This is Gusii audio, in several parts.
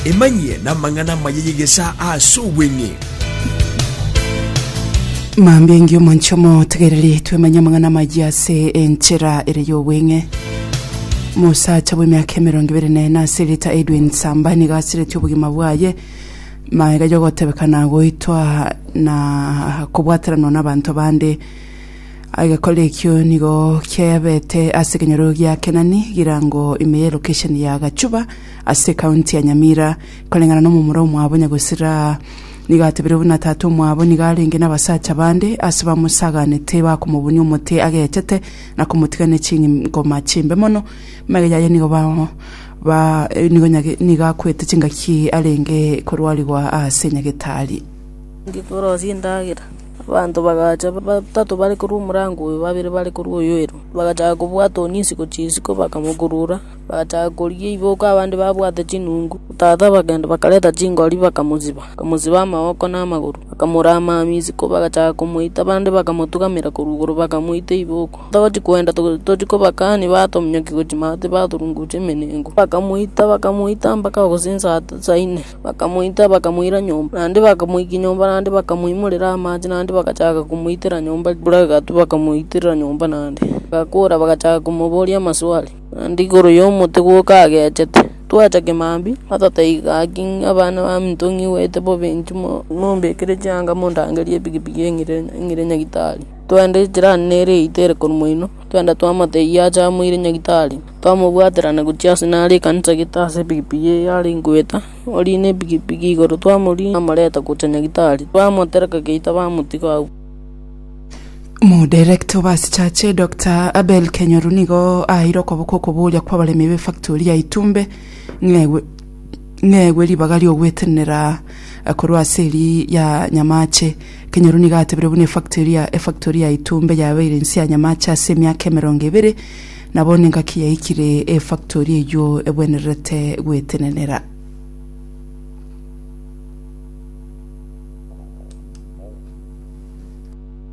Emanyie namang'ana amaya y'egesaa ase obweng'e. Mambia engiya omonche omo tegereri twemanye amang'ana amaya ase enchera ere y'obweng'e mosacha bw'emiaka emerongo ebere na ene ase rita edwin samba nigo asireti obogima bwaye maega yogotebekana goitwa na kobwataranwa n'abanto bande Agekora ekio nigo kiabete ase ekenyoro gia Kenani girango ime ye lokesheni ya Gachuba ase ekaunti ya Nyamira, koreng'ana nomomura omwabo Nyagosira. Nigo atebire buna tata omwabo nigo arenge nabasacha bande ase bamosaganete bakomobunia omote agechete na komotiga ne chingoma chimbe mono. Magega yaye nigo nigo akwete chingaki arenge korwarigwa ase nyagetari. Ngikorosia endagera. Abanto bagacha, batato bare korwa omorango oyo, babere bare korwa oyo ere. Bagachaka kobwata one isiko chisiko, bakamokurura, bagachaka korigia ebiboka abande babwate chinungu. Tata bakagenda bakareta chingori bakamotiba, bakamosiba amaboko na amagoro, bakamoramamia isiko bagachaka komoita, abande bakamotugamera korwa igoro bakamoita ebiboka. Togochia koenda tochia kobakani batominyokia gochia maate baturunguche emenenko, bakamoita bakamoita mpaka gose insa insa ine. Bakamoita, bakamoira nyomba, naende bakamoikia nyomba naende bakamoimorera amache naende bagachaka komoitera nyomba ekura egatwa bakamoitera nyomba naende. Agakora bagachaka komoboria amaswali, naende igoro yomote gwoka agechete. Twacha kemambia atata iga gaki ng'a abana baminto ng'igwete bobe inche mombekere chianga mondangerie epikipiki eng'ire eng'ire nyagitari. Twaenda echira nere eite ere korwa moino, twaenda twamate eyio acha amoire nyagitari. Twamobwaterana gochia aase naro ekanisa gete aase epikipiki eye yare ngoeta, oriina epikipiki igoro twamoriina twamoreta gochia Nyagitari, bamotereka geita bamotiga agwo. Omodirector obe ase church Doctor Abel Kenyoru nigo aeire okoboko okoboria kw'abaremi b'efactori ya Itumbe ng'egwe ng'egwe ribaga ri'ogwetenenera korwa ase eri ya Nyamache. Kenyoru nigo atebire buna efactori ya efactori ya Itumbe yabeire inse ya Nyamache ase emiaka emerongo ebere, Nabo nengaki yaikire efactori eyio egwenererete gwetenenera.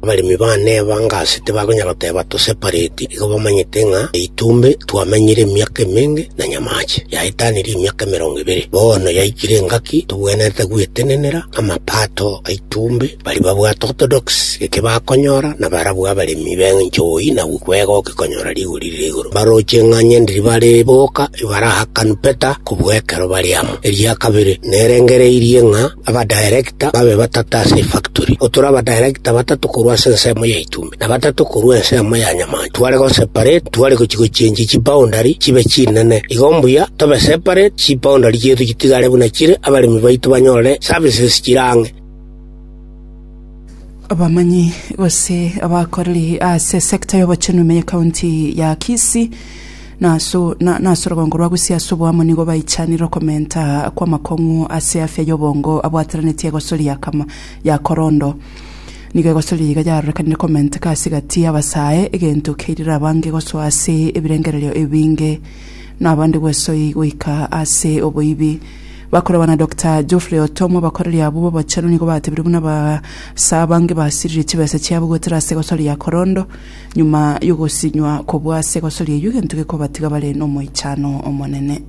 Abaremi baane ebangasi tibakonyara goteba tosepareti, igo bamanyete ng'a eitume twamenyire emiaka emenge na nyamache, yaetanire emiaka emerongo ebere. Bono yaikire engaki tobwenerete gwetenenera amapato aitumbe. Baria babwate orthodoksi geke bakonyora, na barabwo abaremi b'enchooi na gwega ogekonyora rigori rire igoro. Baroche ng'a nyendiri bare boka ibarahakanu Peter kobua ekero bare amo. Eria kabere nerengereirie ng'a abadirecta babe batato ase efactori. Otore abadirecta batato korwa ase ensemo ya Itume, na batato korwa ensemo ya Nyamancha. Tware goseparate, tware gochia gochenchia chiboundary chibe chinene. Igo mbuya tobe separate, chiboundary chiaito chitigare buna chire, abaremi baito banyorere services chire ang'e. Abamanyi gose abakoreri ase sector y'obochenu ime ye county ya Kisii na aso na, na ase orogongo rwa Gusii ase oboamo nigo baichanire okomenta kw'amakong'u ase afya y'obongo abwateranetie egosori ya kama ya korondo. Nigo egosori eye iga yarorekanire komenteka ase egati y'abasae, egento keirire abange gosoa ase ebirengererio ebinge, na abande gwesoi goika ase oboibi. Bakorwa na Doctor Geoffrey Otom, abakoreri abwo b'obochenu nigo batebirie buna abasaa abange basiririe chibesa chiabo goetera ase egosoria ya korondo, nyuma y'ogosinywa kobua ase egosoria eyio egento gekobatiga bare nomoichano omonene.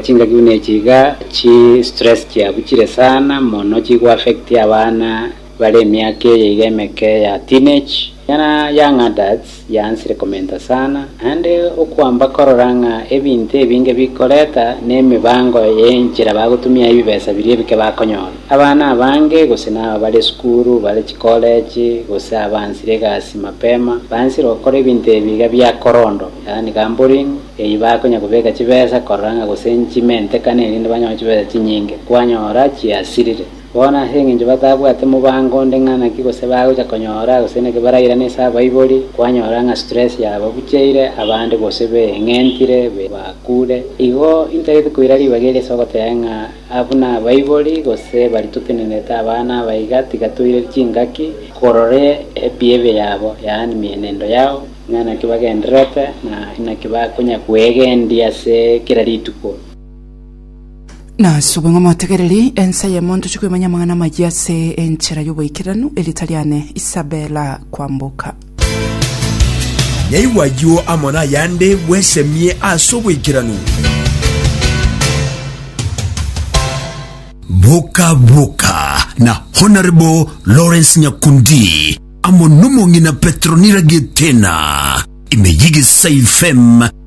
Chingaki buna echi iga chi stress chiabuchire sana mono chigoaffecti abana Bare emiaka eye iga emeke ya teenage, ekiagera young adults yaansire komenta sana, naende okoamba korora ng'a ebinto ebinge bikoreta nemebango y'enchera bagotumia ebibesa biria ebike bakonyora. Abana abange, gose naba bare esukuru, bare chikoleji, gose abaansire egasi mapema, baansire gokora ebinto ebi iga bia korondo, yaani gambling, eyio bakonya kobeka chibesa korora ng'a gose nchimentekane erinde banyore chibesa chinyinge, kwanyora chiasirire. Bono ase engencho batabwate mobango onde ng'a naki gose bagocha konyora gose naki barairana ase abaibori, kwanyora ng'a stress yababucheire abande gose beeng'entire, bakure. Igo intagete koira ribaga eri ase ogoteba ng'a buna abaibori gose baria totenenerete abana aba iga tiga toire chingaki korora ebehavior yabo, yaani mienendo yao, ng'a naki bagendererete na inaki bakonya kwegendia ase kera rituko. Nasube ng'a motegereri ensa y'emo ntoche koimanya amang'ana amayia ase enchera y'oboikeranu erieta riane Isabella Kwamboka. Nyaigwa ayio amo nayande bwesemie ase oboikeranu. Boka Boka na Honourable Lawrence Nyakundi amo n'omong'ina Petronira Gitena ime y'Egesayi FM